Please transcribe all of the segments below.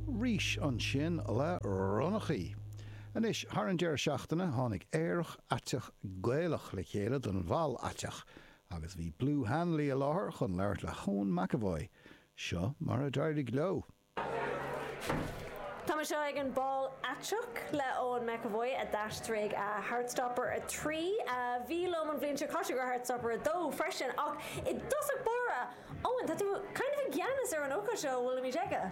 Rís ansin le ronnachaí. Anois, thar an deireadh seachtaine, tháinig Aerach Aiteach Gaelach le chéile don Bhál Aiteach agus bhí Blue Hanley i láthair chun labhairt le hEoin McEvoy. Seo mar a d'éirigh leo. Tá mé anseo ag an Bál Aiteach le Eoin McEvoy a d'aistrigh Heartstopper 3. Bhí liom an bhliain seo caite do Heartstopper 2 freisin ach i dtosach báire, Eoin, tá tú kind of i gceannas ar an ócáid seo a bhfuilimid aige.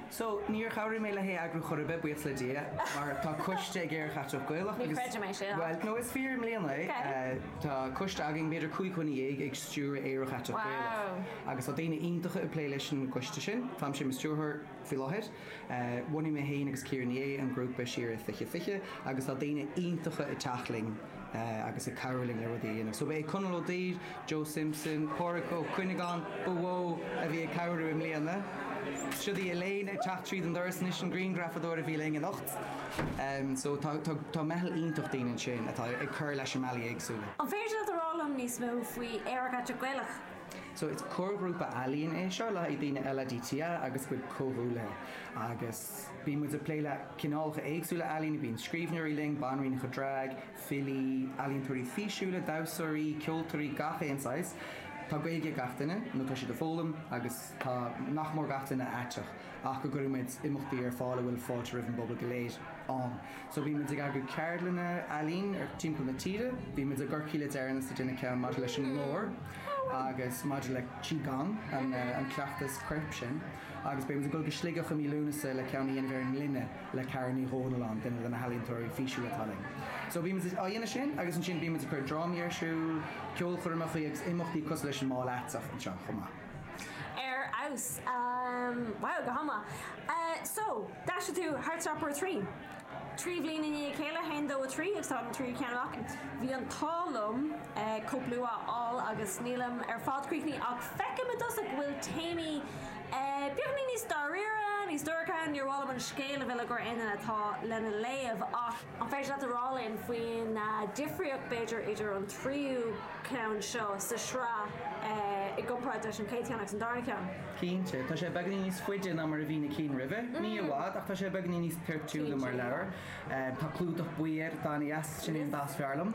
So, níor chabhraigh mé le heagrú chor ar bith, buíochas le Dia, mar tá coiste ag Aerach Aiteach Gaelach agus. Ní chreidim é sin. Bhuel, no, is fíor, i mbliana é. Ok. Tá coiste againn, b'fhéidir cúig dhuine dhéag, ag stiúradh Aerach Aiteach Gaelach. Wow. Agus tá daoine iontacha ag plé leis an gcoiste sin. Táimse i mo stiúrthóir faoi láthair. Bhunaigh mé féin agus Ciara Ní É an grúpa siar 2020 agus tá daoine iontacha ag teacht linn agus ag cabhrú linn le rudaí a dhéanamh. So ba é Conall Ó Duibhir, Joe Simpson, Pádhraic Ó Cuinneagáin ba mhó a bhí ag cabhrú i mbliana. Seo í Elaine ag teacht tríd an doras anois, an grianghrafadóir a bhí linn anocht. So tá tá meitheal iontach daoine ansin atá ag cur leis i mbealaí éagsúla. An féidir leat a rá liom níos mó faoi Aerach Aiteach Gaelach? So is comharghrúpa ealaíon é seo le haghaidh daoine LADTA agus a gcuid comhghuaillithe agus bíonn muid ag plé le cineálacha éagsúla ealaíne, bíonn scríbhneoirí linn, banríonacha draig, filí, ealaíontóirí físiúla, damhsóirí, ceoltóirí, gach aon saghas. Tá Gaeilge ag gach duine nó tá siad ag foghlaim agus tá nach mór gach duine aiteach ach go gcuireann muid imeachtaí ar fáil a bhfuil fáilte roimh an bpobal go léir ann. So bíonn muid ag eagrú ceardlanna ealaín timpeall na tíre. Bhí muid i gCorcaigh le deireanas ag déanamh ceann maidir leis an nglór agus maidir le Qi Gong, an cleachtas coirp sin, agus beidh muid ag dul go Sligeach i mí Lúnasa le ceann a dhéanamh ar an ngloine le Karen Ní Dhomhnalláin, duine de na healaíontóirí físiúla atá linn. So bíonn muid á dhéanamh sin agus ansin bíonn muid ag cur drámaí ar siúl, ceolchoirmeacha agus imeachtaí cosúil leis an mBál Aiteach anseo chomh maith. Ar fheabhas. Wow, go hana mhaith. So, d'aistrigh tú Heartstopper 3. Trí bhliain i ndiaidh a chéile, 1, 2, 3, agus tá an tríú ceann amach. Bhí an t-ádh liom cóip luath a fháil agus nílim ar fad críochnaithe ach feicim i dtosach go bhfuil téamaí beagáinín níos dáiríre, níos dorcha. Níor mhaith liom an scéal a mhilleadh ar éinne eile atá lena léamh ach. An féidir leat a rá linn faoin difríocht, b'fhéidir, idir an tríú ceann seo sa sraith i gcomparáid leis an chéad cheann agus an darna ceann? Cinnte. Tá sé beagáinín níos faide ná mar a bhí na cinn roimhe, ní i bhfad, ach tá sé beagáinín níos toirtiúla mar leabhar. Tá clúdach buí air, atá ana dheas, sin é an dath is fearr liom.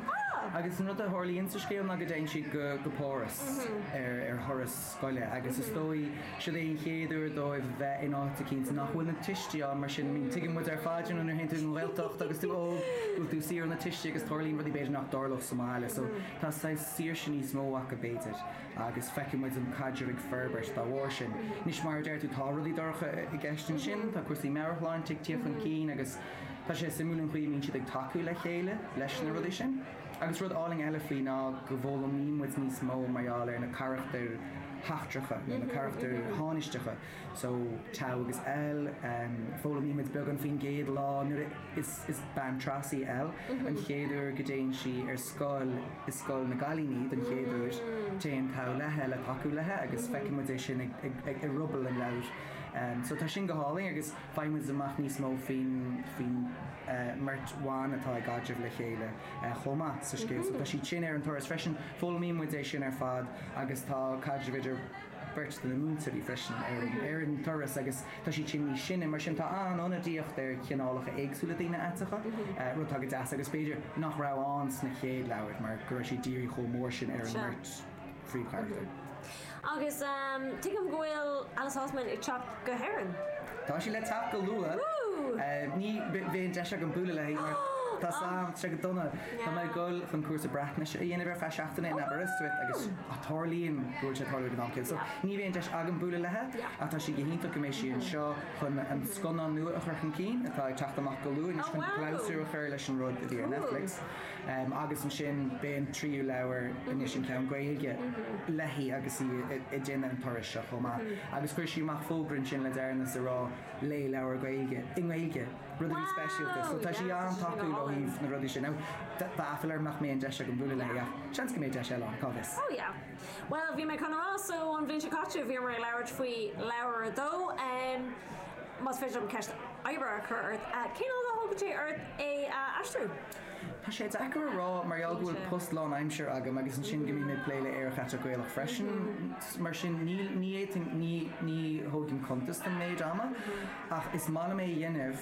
Agus an rud a tharlaíonn sa scéal ná go dtéann siad go Páras ar thuras. scoile agus is dóigh siod é an chéad uair dóibh bheith in áit eicínt nach bhfuil na tuistí ann mar sin tuigeann muid ar fad sin nuair théann tú ag an Ghaeltacht agus tú óg bhfuil tú saor ó na tuistí agus tarlaíonn rudaí b'fhéidir nach dtarlódh sa mbaile so tá saghas saoirse níos mó acu b'fhéidir agus feiceann muid an caidreamh ag forbairt dá bharr sin. Anois mar a deir tú tá rudaí dorcha i gceist ansin, tá cúrsaí meabhairshláinte ag tíocht chun cinn agus tá sé suimiúil an chaoi a mbíonn siad ag tacú le chéile leis na rudaí sin. Agus rud álainn eile faoi ná go bhfoghlaimíonn muid níos mó mar gheall ar na carachtair sheachtracha nó na carachtair thánaisteacha, so, Tao agus Elle, foghlaimíonn muid beagán faoin gcéad lá nuair a is bean tras í Elle, an chéad uair go dtéann sí ar scoil i scoil na gcailíní don chéad uair, téann Tao léithi le tacú léithi agus feiceann muid é sin i ruball an leabhair, so tá sin go hálainn agus. Faigheann muid amach níos mó faoin mbeirt bhan atá i gcaidreamh le chéile chomh maith sa scéal so. Tá siad sin ar an turas freisin. Foghlaimíonn muid é sin ar fad agus tá caidreamh idir beirt de na múinteoirí freisin ar an turas agus tá siad sin níos sine. Mar sin tá an-ionadaíocht ar chineálacha éagsúla daoine aiteacha, rud atá go deas agus b'fhéidir nach raibh ann sna chéad leabhair mar go raibh siad dírithe chomh mór sin ar an mbeirt phríomhcharachtar. Agus tuigim go bhfuil Alice Oseman ag teacht go hÉirinn? Tá sí le teacht go luath. Ní bheidh deis agam bualadh léi mar tá an t-am go dona. Tá mé ag dul chun cúrsa Breatnaise a dhéanamh ar feadh seachtaine in Aberystwyth agus tarlaíonn go bhfuil sé ag tarlú ag an am céanna. So ní bheidh deis agam bualadh léi ach tá sé go hiontach go mbeidh sí anseo chun an scannán nua a chur chun cinn atá ag teacht amach go luath anois chun clabhsúr a chur leis an rud a bhí ar Netflix. agus ansin b'é an tríú leabhar anois an ceann Gaeilge léi agus í ag déanamh an turais seo chomh maith agus chuir sí amach fógra ansin le deireanas ag rá Léigh leabhar Gaeilge, i nGaeilge, rud a bhí speisialta so tá sí an-tacúil ó thaobh na rudaí sin. Now, tá aiféala orm nach mbeidh an deis agam bualadh léi ach seans go mbeidh deis eile ann, cá bhfios? Oh yeah. Bhuel, bhí mé chun a rá so an bhliain seo caite bhíomar ag labhairt faoi leabhar a dó, em, más féidir liom ceist oibre a chur ort, cén fhad a thógann sé ort é a aistriú? Tá sé deacair a rá mar gheall go bhfuil post lánaimsire agam agus ansin go mbím ag plé le Aerach Aiteach Gaelach freisin mar sin ní fhéadfainn, ní thógaim cuntas den méid ama ach is maith liom é a dhéanamh.